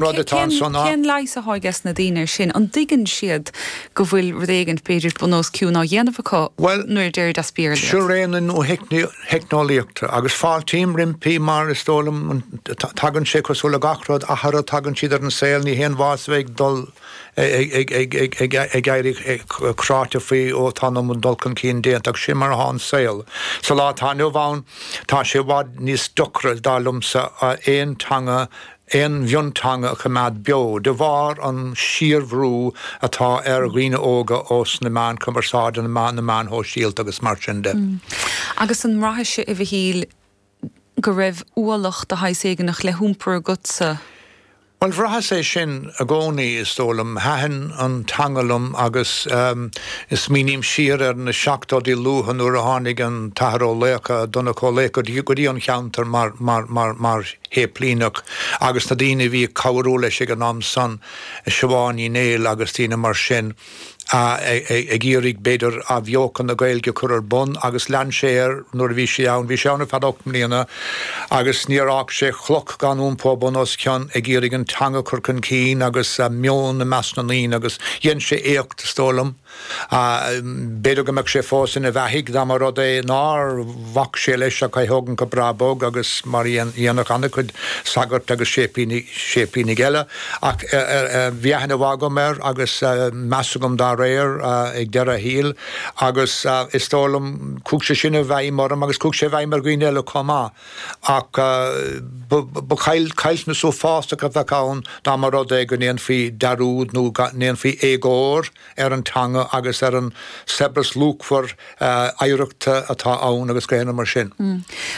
rud atá ansan á. Cén leigheas atá ages na daoine ar sin? An dtuigeann siad go bhfuil rud éigint, b'fhéidir, bun os cionn á dhéanamh acu Bhuel, nuair a deirid as Béarla? seo ré na nuatheicneolaíochta agus fáiltím roimpi mar is dóigh liom tagann sé cosúil le gach rud, athruithe, tagann siad ar an saol ní haon mhaitheas a bheith ag dul ag éirí cráite faoi ó tá an dul chun cinn déanta agus sin mar atá an saol sa lá atá inniu ann. Tá sé i bhfad níos deocra, dar liomsa, aon teanga a aon mhionteanga a choimeád beo de bharr an síorbhrú atá ar dhaoine óga ós na meáin cumarsáide, na meáin shóisialta agus mar sin de. Agus an mbraithis-se, a Mhichíl, go raibh ualach de shaghas éiginach le hiompar agatsa? Bhuel, bhraitheas é sin i gcónaí, is dóigh liom. Thaitin an teanga liom agus is smaoiním siar ar na seachtóidí luatha nuair a tháinig an tAthair Ó Laochdha, Donncha Ó Laochdha, go dtí an cheantar mar shéiplíneach agus na daoine a bhí ag cabhrú leis ag an am san, Siobhán Ní Néill agus daoine mar sin, ag iarraidh, b'fhéidir, athbheochan na Gaeilge a chur ar bun agus lean sé air nuair a bhí sé ann. Bhí sé ann ar feadh ocht mbliana agus níor fhág sé cloch gan iompó bun os cionn ag iarraidh an teanga a chur chun cinn agus a meon i measc na ndaoine agus dhein sé éacht, is dóigh liom. B'fhéidir go mbeadh sé fós ina bheathaidh dá mba rud é nár bhac sé leis ach é thógaint go breá bog agus mar a dhéanfadh an-chuid sagart agus séiplínigh eile. Ach bhí aithne mhaith agam air agus meas agam dá réir ag deireadh a shaoil agus is dóigh liom, chuaigh sé sin i bhfeidhm orm agus chuaigh sé i bhfeidhm ar dhaoine eile chomh maith. Ach ba chaillteanas uafásach a bheadh ann dá mba rud é go ndéanfaí dearúd nó go ndéanfaí éagóir ar an teanga agus ar an saibhreas luachmhar oidhreachta atá ann agus gach aon ní mar sin.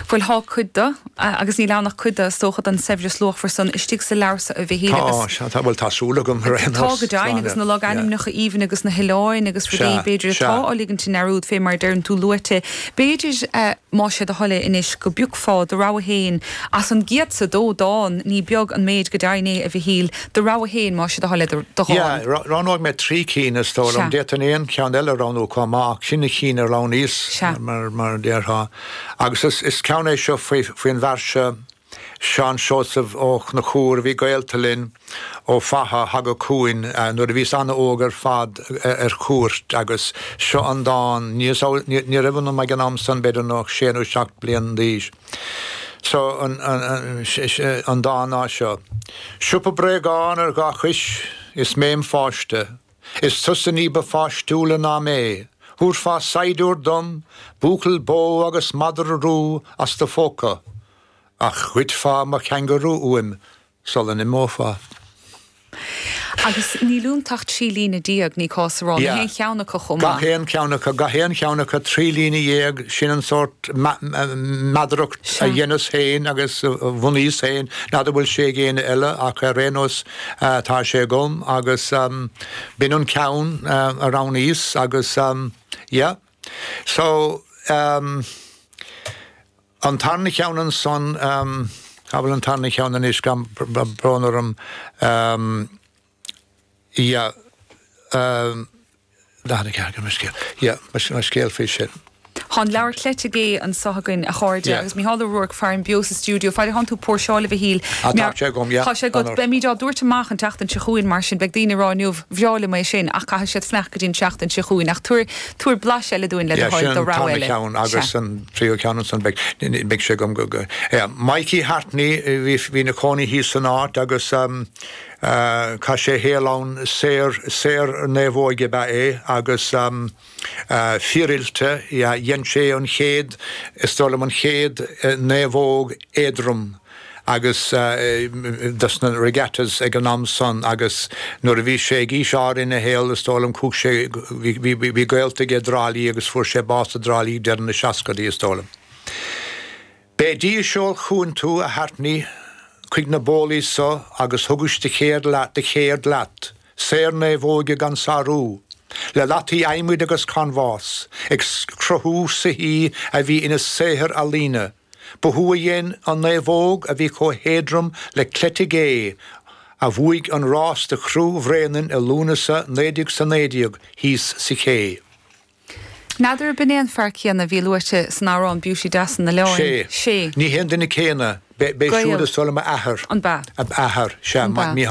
Bhuel, tá cuid de, agus níl ann ach cuid de, is dócha, den saibhreas luachmhar san istigh sa leabhar seo, a Mhichíl agus. Tá, tá, bhuel tá súil agam ar aon nós. Tá go deimhin, agus na logainmneacha aoibhinn agus na hoileáin agus rudaí b'fhéidir atá á ligint i ndearúd fé mar a deireann tú luaite b'fhéidir. Más é do thoil é anois go bpiocfá do rogha fhéin as an gcéad is a dó dán, ní beag an méid go deimhin é, a Mhichíl. Do rogha fhéin, más é do thoil é do dhán. Yeah, roghnóidh mé trí cinn, is dóigh liom. Sea. D'fhéadfainn aon cheann eile a roghnú chomh maith, ach sin na cinn a roghnaíos, Sea. mar a déarfá. Agus is ceann é seo faoin bhfear seo. Seán Seosamh Ó Conchúir a bhí gaolta linn ó Fatha. Thagadh chugainn nuair a bhíos an-óg ar fad ar cuairt agus seo an dán ní, ní raibh ionam ag an am san b'fhéidir ach sé nó seacht bliain d'aois so an dán ná seo. Siopa bréagán ar dhá chois is mé im pháiste. Is tusa ní ba pháistiúla ná mé. Thabharfá saighdiúir dom, buachaill bó agus madra rua as do phóca, ach ghoidfeá mo changarú uaim sula n-imeofá. Agus níl iontu ach trí líne déag, ní cás a rá, na haon cheann acu chomh maith? Gach aon cheann acu, gach aon cheann acu, trí líne dhéag, sin an sórt meadaracht a dheineas féin agus a bhunaíos féin, n'fheadar bhfuil sé ag éinne eile, ach ar aon nós, Tá sé agam agus b'in an ceann a roghnaíos agus yeah so an tarna cheann ansan, cá bhfuil an tarna cheann anois agam, brón orm, yeah. N4 agam an scéal. Yeah, mar sin an scéal faoi sin. Thá an leabhar cleite gé anso againn, a chairde, Yeah. agus Micheál Ó Ruairc farainn beo sa stiúideo. Faid a thánn tú póirseáil, a Mhichíl, Ah, tá meabh- sé agam, yeah, Thá sé agat. d'aonort. Beimid á dtabhairt amach an tseachtain seo chugainn, mar sin. Beidh daoine ag rá inniu, bhreá liom é sin, ach caithfidh siad fanacht go dtí an tseachtain seo chugainn. Ach tabhair, tabhair blas eile dúinn, le do Yeah, sin thoil, do an rogha tarna eile. ceann Sea. agus an tríú ceann ansan beidh, ni- ni- beidh sé agam go, go, yeah. Mikey Hartney, eh, bhí, bhí 'na chónaí thíos san áit agus, ehm, Chaith sé a shaol ann, saor, saor naomhóige ab ea é agus fíoroilte, dhein sé an chéad, is dóigh liom, an chéad naomhóg éadrom agus dos na regattas ag an am san agus nuair a bhí sé ag aois áirithe ina shaol is dóigh liom chuaigh sé, bhí, bhí gaolta aige i dTrá Lí agus fuair sé bás i dTrá Lí deireadh na seascaidí is dóigh liom. B'é Dia a sheol chugainn tú, a Hartney, chuig na bólaí seo agus thugais do chéird leat, saor naomhóige gan sarú, le lataí adhmaid agus canbhás, ag cruthú soithí a bhí ina saothair ealaíne. Ba thú a dhein an naomhóg a bhí chomh héadrom le cleite gé, a bhuaigh an rás do chriú Bhréanainn i Lúnasa 1919 thíos sa Ché. N'fheadar a' b'in é an fear céanna a bhí luaite san amhrán Beauty Deas an Oileáin? Ní hé an duine céanna. B'é, b'é siúd is dóigh liom, a athair. An b'ea? A athair, sea. An b'ea? Ní hea.